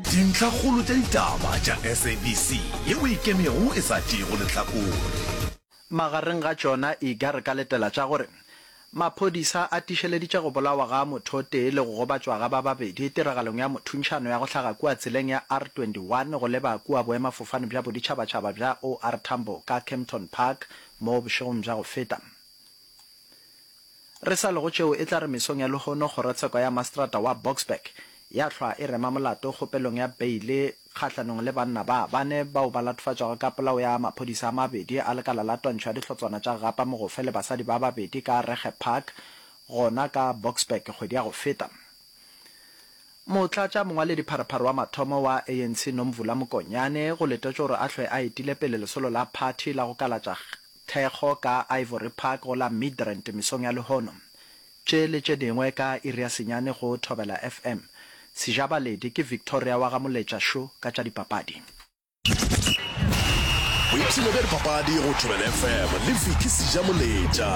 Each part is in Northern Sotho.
Dintlhakgolo tša ditaba tša SABC ye o e kemego e sa tšeego lehlakore. Magareng ga tšona e ka re ka letela tša gore maphodisa a tišeleditše go bolawa ga mothotee le go gobatšwa ga ba babedi tiragalong ya mothuntšhano ya go hlaga kua tseleng ya R21 go leba kua boemafofane bja boditšhabatšhaba bja OR Tambo ka Kempton Park mo bošegong bja go feta Re sa lego tšeo e tla re mesong ya lehono kgorotsheko ya mastrata wa Boksburg ya hlwa e rema molato kgopelong ya beile kgahlanong le banna ba bane bao ba latofatšwago ka polao ya maphodisa a mabedi a lekala la twantsho ya dihlotswana tša gapa mogofe le basadi ba babedi ka Regge Park gona ka Boksburg kgwedi ya go feta. Motlatša mongwaledi pharephare wa mathomo wa ANC Nomvula Mokonyane go letetšwe gore a hlwe a etile pele lesolo la phathi la go kalatša Thekgo ka Ivory Park go la Midrand mesong ya lehono. Tše le tše dingwe ka iri ya senyane go Thobela FM. Sejabaledi ke Victoria wa ga Moletša Šo ka tša dipapadi. Boipshino bja dipapadi go Thobela FM le Vicky Sejamoletša.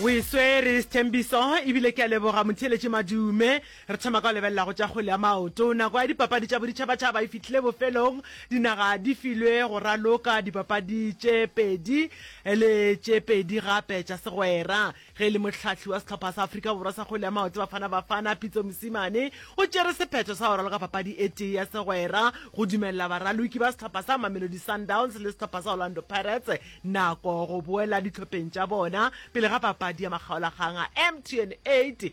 O e swere Sthembiso ebile ke a leboga motheeletši Madume Re thoma ka go lebelela go tša kgwele ya maoto. Nako ya dipapadi tša boditšhabatšhaba e fihlile bofelong. Dinaga di filwe go raloka dipapadi tše pedi le tše pedi gape tša segwera. Ge e le mohlahli wa sehlopha sa Afrika Borwa sa kgwele ya maoto Bafana Bafana, Pitso Mosimane, o tšere sephetho sa go raloka papadi e tee ya segwera go dumelela baraloki ba sehlopha sa Mamelodi Sundowns le sehlopha sa Orlando Pirates nako go boela dihlopeng tša bona pele ga papadi ya makgaolakgang a MTN 8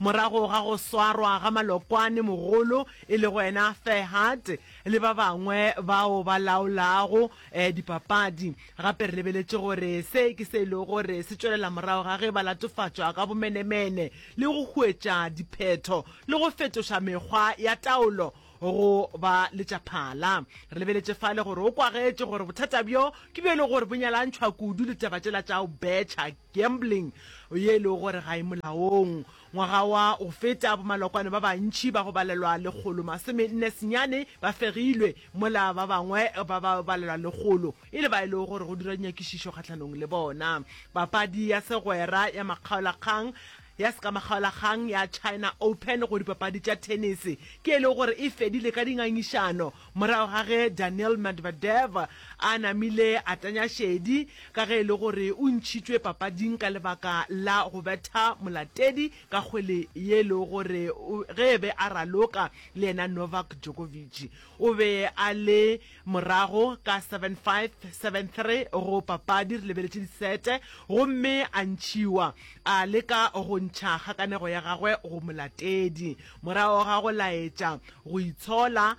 Morago ga go swarwa ga malokwane mogolo e lego yena Ferhat le ba bangwe bao ba laolago dipapadi, gape re lebeletše gore se ke se e lego gore se tšwelela morago ga ge ba latofatšwa ka bomenemene le go huetša diphetho le go fetoša mekgwa ya taolo go ba le tša phala. Re lebeletše fale gore o kwagetše gore bothata bjo ke bjo e lego gore bo nyalantšhwa kudu le taba tšela tša go betšha, gambling, ye e lego gore ga e molaong. Ngwaga wa go feta bomalokwane ba bantši ba go balelwa lekgolo masome nne senyane ba fegilwe, mola ba bangwe ba ba balelwa lekgolo e le ba e lego gore go dirwa dinyakišišo kgahlanong le bona. Papadi ya segwera ya makgaolakgang ya sekamagaolagang ya China Open go dipapadi tša thenese ke e lego gore e fedile ka dingangišano morago ga ge Daniil Medvedev a namile a tanya šedi ka ge e le gore o ntšhitšwe papading ka lebaka la go betha molatedi ka kgwele ye e lego gore ge e be a raloka le yena Novak Djokovic o be a le Morago ka 7573 go papadi re lebeletše disete gomme a ntšhiwa, a leka go ntšha kgakanego ya gagwe go molatedi morago ga go laetša go itshola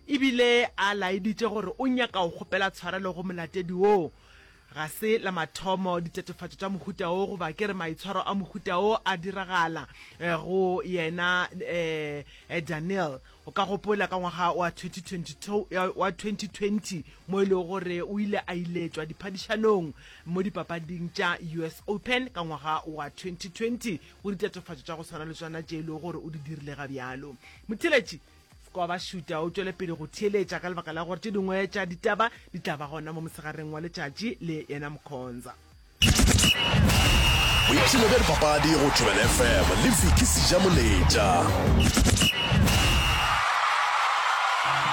e bile a laeditše gore o nyaka go kgopela tshwarelo go molatedi woo Ga se la mathomo ditatofatšo tša mohuta wo goba ke re maitshwaro a mohuta wo a diragala go yena Daniel. O ka gopola ka ngwaga wa 2020 mo e lego gore o ile a iletšwa diphadišanong mo dipapading tša US Open ka ngwaga wa 2020 go ditatofatšo tša go swana le tsona tše e lego gore o di dirile ga bjalo. Motheletši. Kwa ba šuta o tšwele pele go theeletša ka lebaka la gore tše dingwe tša ditaba di tla ba gona mo mosegareng wa letšatši le yena Mkhonza. Boipshino bja dipapadi go Thobela FM le Vicky Sejamoletša.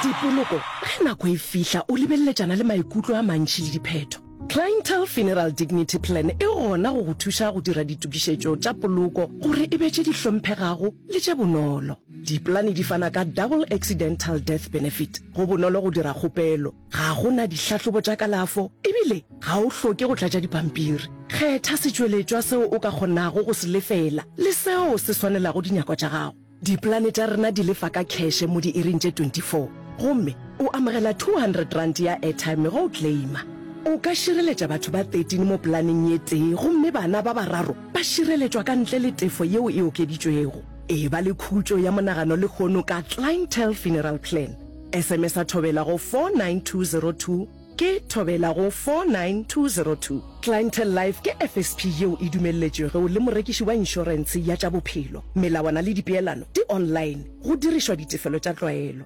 Dipoloko, Ge nako e fihla o lebeleletšana le maikutlo a mantši le diphetho. Clientele Funeral Dignity Plan e gona go go thuša go dira ditokišetšo tša poloko gore e be tše di hlomphegago le tše bonolo. Dipolane di fana ka Double Accidental Death Benefit. Go bonolo go dira kgopelo. Ga go na dihlahlobo tša kalafo ebile ga o hloke go tlatša dipampiri. Kgetha setšweletšwa seo o ka kgonago go se lefela le seo se swanelago dinyako tša gago. Dipolane tša rena di lefa ka kheshe mo diiring tše 24 gomme o amogela R200 ya airtime ge o claima. O ka šireletša batho ba 13 mo polaneng ye tee gomme bana ba bararo ba šireletšwa ka ntle le tefo yeo e okeditšwego. E ba le khutšo ya monagano lehono ka Clientele Funeral Plan. SMS-a Thobela go 49202 ke Thobela go 49202. Clientele Life ke FSP yeo e dumelletšwego le morekiši wa inšorentshe ya tša bophelo. Melawana le dipeelano di online, go dirišwa ditefelo tša tlwaelo.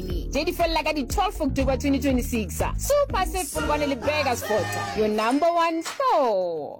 Sydney tše di felela ka di 12 October 2026. Super Safe Polokwane le Burger Sport, your number one store.